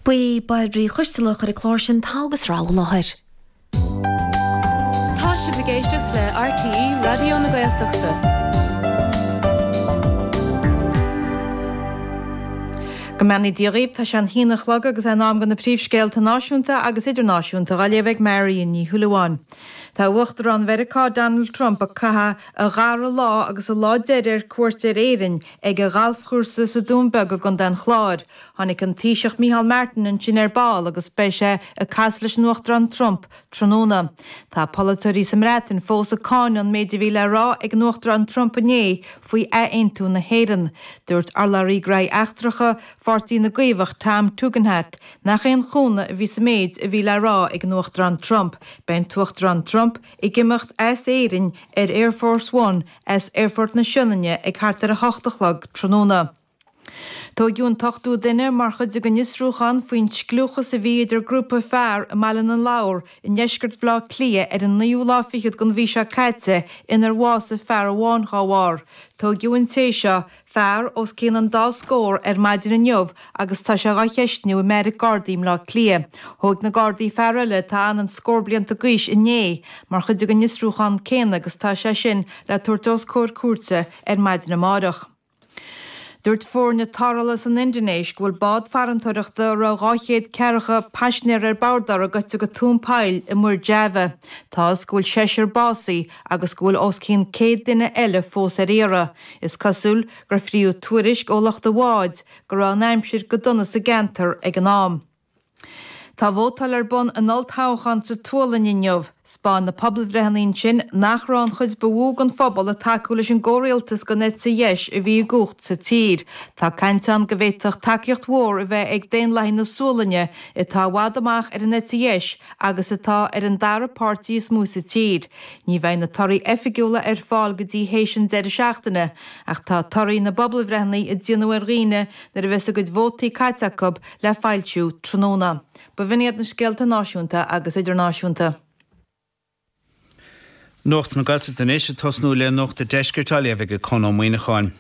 Ba í Bairbre Uí Choistealbha a chuir an clár sin Togha agus Rogha i láthair. Tá sibh ag éisteacht le RTÉ Raidió na Gaeltachta. Go mbeannaí Dia dhaoib, tá sé a haon a chlog agus é in am do na príomhscéalta náisiúnta agus idirnáisiúnta dhá léamh ag Marian Ní Shúilleabháin. Tá Uachtarán Mheiriceá Donald Trump ag caitheadh a dhara lá agus a lá deiridh ar cuairt ar Éirinn Ag a ghalfchúrsa sa Dún Beag i gContae an Chláir, tá an Taoiseach Micheál Martin ansin ar ball agus beidh sé ag casadh leis an Uachtarán Trump tráthnóna. Tá polaiteoirí sa mBreatain fós ag cáineadh an méid a bhí le rá ag an Uachtarán Trump inné faoi ath-aontú na hÉireann. Dúirt urlabhraí Gnóthaí Eachtracha Pháirtí na gCaomhach Tom Tugendhat nach aon chúnamh a bhí sa méid a bhí le rá ag an Uachtarán Trump. Beidh an tUachtarán Trump ag imeacht as Éirinn ar Air Force One as Aerfort na Sionainne ag thart ar 8 a chlog tráthnóna. Tóigeadh an t-ochtú duine mar chuid den fhiosrúchán faoin scliúchas a bhí idir grúpa fear i mBaile na Lobhar i ndeisceart Bhleá Cliath ar an naoú lá fichead den mhí seo caite inar bhásaigh fear amháin dá bharr. Tóigeadh an té seo fear os cionn an dá scór ar maidin inniu agus tá sé dhá cheistiú i mbeairic Gardaí i mBleá Cliath. Thóig na Gardaí fear eile atá sna scór blianta d'aois inné mar chuid den fhiosrúchán céanna agus tá sé sin le tabhairt os comhair cúirte ar maidin amáireach. Dúirt foirne tarrthála san Indinéis go bhfuil bád farantóireachta a raibh 200 ceathracha paisnéir ar bord uirthi goite go tóin poill i Muir Java. Tá a fhios go bhfuil seisear básaithe agus go bhfuil os cionn 100 duine eile fós ar iarraidh, is cosúil gur fríodh tuairisc ó lucht an bháid go raibh an aimsir go dona sa gceantar ag an am. Tá vótáil ar bun in olltoghchán sa tSualainn inniu. Spáin na pobalbhreitheanna ansin nach raibh an chuid ba mhó den phobal ag tacú leis an gcomhrialtas den eite dheis a bhí i gcumhacht sa tír. Tá caint ann go bhféadfadh tacaíocht mhór a bheith ag Daonlathaigh na Sualainne atá i bhfad amach ar an eite dheis agus atá ar an dara páirtí is mó sa tír. Ní bheidh na torthaí oifigiúla ar fáil go dtí théis an deireadh seachtaine, ach tá torthaí na bpobalbhreitheanna a déanfar ar dhaoine nuair a bheas a gcuid vótaí caite acu le foilsiú tráthnóna. B'in iad na scéalta náisiúnta agus idirnáisiúnta. Nuacht na Gaeltachta anois ag tosnú le Nuacht a' Deiscirt á léamh ag Conn Ó Muíneacháin.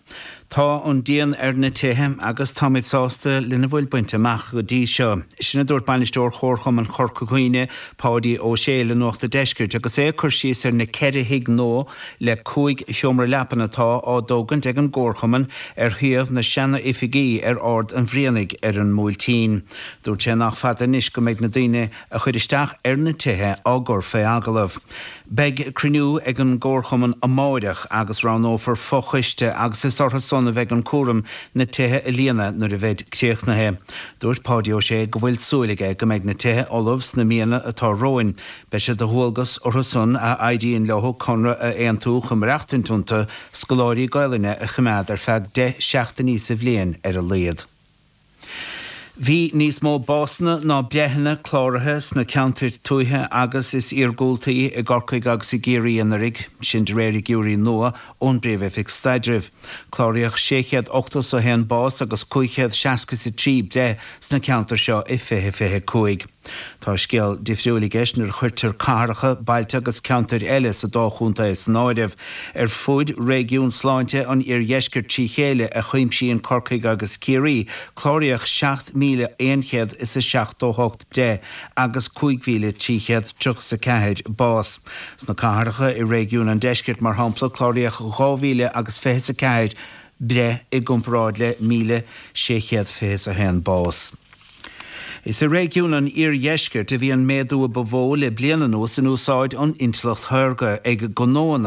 Tá an díon ar na tithe agus táimid sásta lena bhfuil bainte amach go dtí seo. Sin a dúirt Bainisteoir Chomharchumann Chorca Dhuibhne, Páidí Ó Sé le Nuacht a' Deiscirt agus é ag cur síos ar na ceithre thigh nua le cúig sheomra leapan atá á dtógaint ag an gComharchumann ar shuíomh na seana oifigí ar Ard an Bhrianaigh ar an mBuailtín. Dúirt sé nach fada anois go mbeidh na daoine a chuir isteach ar na tithe á gcur fé agallamh. Beidh cruinniú ag an gComharchumann amáireach agus roghnófar fo-choiste agus is orthu san a bheidh an cúram na tithe a líonadh nuair a bheid críochnaithe. Dúirt Páidí Ó Sé go bhfuil súil aige go mbeidh na tithe ullamh sna míonna atá romhainn. Beidh sé de dhualgas orthu san a n-éiríonn leo conradh a aontú go mbeidh reachtaint iontu scoláirí Gaolainne a choimeád ar feadh deich seachtainí sa bhliain ar a laíod. Bhí níos mó básanna ná breitheanna cláraithe sna ceantair tuaithe is iargúltaí i gCorcaigh agus i gCiarraí anuraidh, sin de réir figiúirí nua ón bPríomh-Oifig Staidrimh. Cláraíodh 681 bás agus 563 breith sna ceantair seo i 2025. Tá scéal difriúil i gceist nuair a chuirtear cathracha, bailte agus ceantair eile sa dá chontae san áireamh. Ar fud réigiún sláinte an Iardheiscirt trí chéile, a chuimsíonn Corcaigh agus Ciarraí, cláraíodh 7,100 is a seachtó hocht breith agus 5,300 triocha is a ceathair bás. Sna cathracha i réigiún an Deiscirt, mar shampla, cláraíodh dhá mhíle agus fiche is a ceathair breith i gcomparáid le míle sé chéad fiche is a haon bás. Is i réigiún an iardheiscirt a bhí an méadú a ba mhó le bliain anuas in úsáid an intleacht shaorga ag gnóanna.